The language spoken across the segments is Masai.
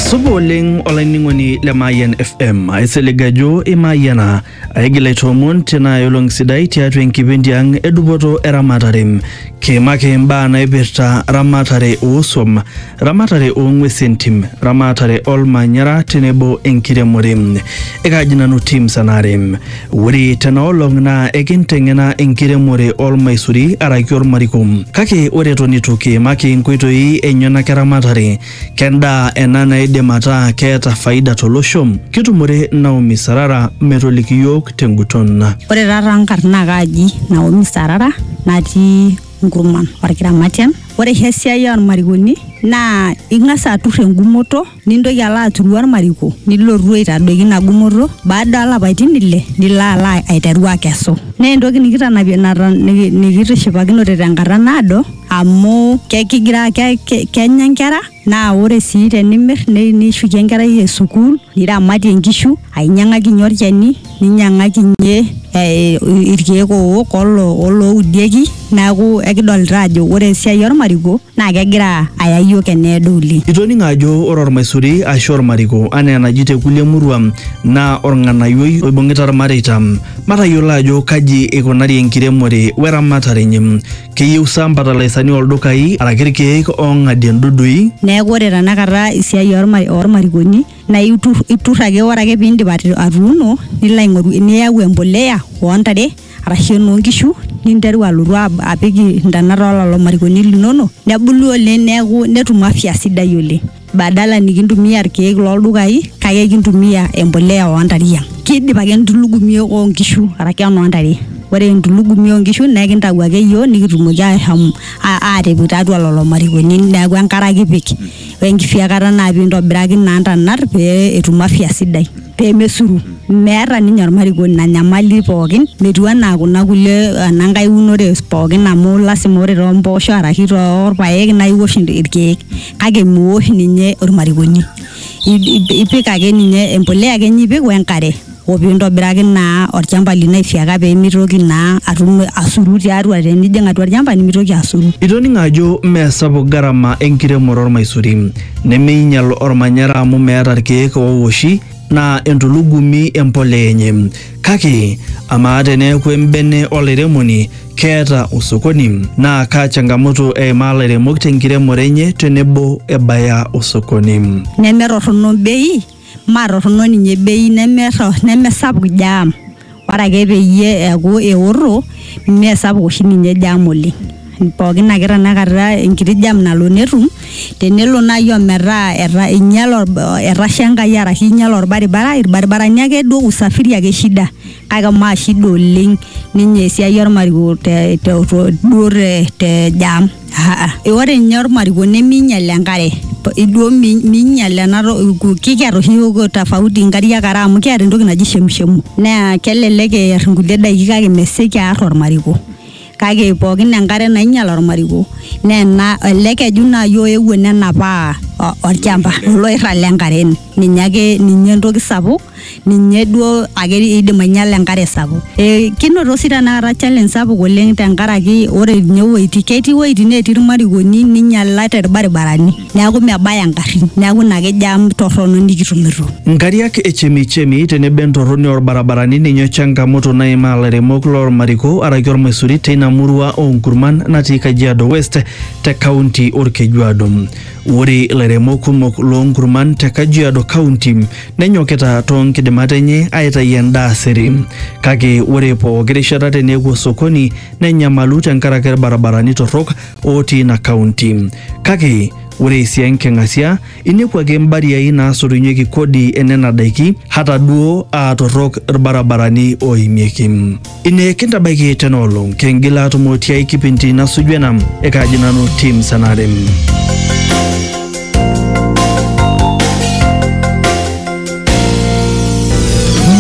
supa oleng olainining'oni le mayian fm aisilig ajo imayiana aigil aitoomon tenaa olong sidai tiatua enkipindi ang edupoto eramatare kiimaki imbaa naipirta ramatare oosuam ramatare oong'uesi entim ramatare olmanyara tenebo enkiremore ekaaji nanu tim sanare Ore tena olong naa ekinteng'ena enkiremore olmaisuri araki olmariko. Kake ore eton eitu kiimaki inkoitoi enyenak eramatare, kendaa ena naidim ataa keeta faida tolosho? Kitumore Naomi Sarara metoliki iyiook tenguton. Ore taa taa nkarn naa kaaji Naomi Sarara natii Nkurman, Olkiramatian. Ore oshi esiai olmarikoni naa ing'as atur engumoto. nintoki alo aturu ormariko nilotu aitadoiki ina gumoto baada olapaitin ile nilo alo aiteru akesu naa entoki nikitanapie naton niki- nikitishipakinote tenkata naado amu ke- kigira ke- ke- kenya inkera naa ore sii tenimirr nei- nishukie enkerai e sukuul niramatie inkishu ainyiang'akinyie olchani ninyiang'akinyie eh, irkeek owok olo- oloudieki neeku ekidolita ajo ore esiai ormariko. naa kegira aya iyiook eneedo oleng. Itoning'o ajo ore olmaisuri aashu olmariko anaa enaji te kulie muruan naa olng'anayioi oibung'ita ilmareita. Matayiolo ajo kaji eikunari enkiremore we eramatare enye. Keyieu sa mfatalaisani oo ldukai araki ilkeek oong'adie ndudui? Neeku ore tenakata esiai oo lmarikoni naa iturr ake ore ake pee iindip atuuno nilo aing'oru niyau embolea oo ntare. arashu enoo nkishu ninteru alotu ab- apik intanat ololo marikoni linono nebulu oleng neeku netum afya sidai oleng badala nikintumia irkeek loldukai kake ekintumia embolea ontare ang kidip ake entulugumi onkishu arake enontare ore entulugumi onkishu naa ekintau ake iyiok nikitumoki ashom a- atipik tiatua lolo marikoni neeku enkare ake ipik. wenkisiakata naa pintobiraki naa ntanat pee etum afya sidai pemesuru meeta ninye ormarikoni ina nyamali pookin metiu anaa kuna kulie enankae unore pookin amu lasima ore tompoosho araki torpayek naa iwosh irkeek kake miwosh ninye ormarikoni I- i- ipik ake ninye empulia ake ninye ipik wenkare o pee intobiraki naa olchamba lino aifyeka pee mitoki naa atum asuru tiatua tenijing atua olchamba nimitoki asuru. Itoning'o ajo mme sapuk garama enkiremore olmaisuri, nemeinyal olmanyara amu meeta ilkeek oowoshi naa entulugumi empolea enye. Kake amaa teneeku embene olairemoni keeta osokoni? Naa kaa changamoto eimaa ilairemok tenkiremore enye tenebo ebaya osokoni? Nemetorrono bei. maa torrono ninye bei neme nemesapuk jam ore ake peyie eeku eorro mee sapuk oshi ninye jam oleng pookin ake tanakata enkiti jam nalo netum tenelo naaji ometaa eta einyiale etasha enkai arashu einyiale orbaribara irbaribarani akeduo usafiri ake shida. kake maa shida oleng ninye esiai ormariko te, te, to- duo te, te jam Aa, ore ninye ormariko neminyal enkare P- iduo mi- minyal ena to- ku- kikiata oshi yiok tofauti nkariak are amu kiata entoki naji shemshemu naa kelelek eer nkulie daiki kake mesioki aar ormariko kake pookin enkare nainyal ormariko naa ena ele keju naaji oewuo nenapaa o- olchamba oloirrag lenkare ninye ake ninye entoki sapuk ninye duo ake idim ainyiala enkare sapuk e, kinoto sii tenakata challenge sapuk oleng tenkaraki ore ninye iwuejitin ketii iwuejitin netii irmarikoni ninyialate irbaribarani. neaku mebaya ingarrin neaku ina ake jam torrono nikitumito. Nkariak e chemichemi tenebo entorroni oo lbarabarani ninye changamoto naimaa lairemok loo lmariko araki olmaisuri teina murua oo nkurman natii Kajiado West te kaunti Olkejuado. Ore lairemok kumok loo nkurman te Kajiado kaunti nenyokita too nkidimat enye aitayu endaa siri. Kake ore pooki rishata tenepuo sokoni nenyamalu tenkaraki lbarabarani torrok otii ina kaunti. Kake ore esia enking'asia, inepu ake imbariai naasotunyeki kodi e nena daiki hata duo aa torrok ilbarabarani ooimieki. Ine kintabaiki tena olong, kingil aatumo tiai kipindi nasuju ena. Ekaaji nanu Tim Sanare.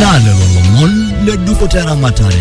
Naa lelo lomon le dupoto eramatare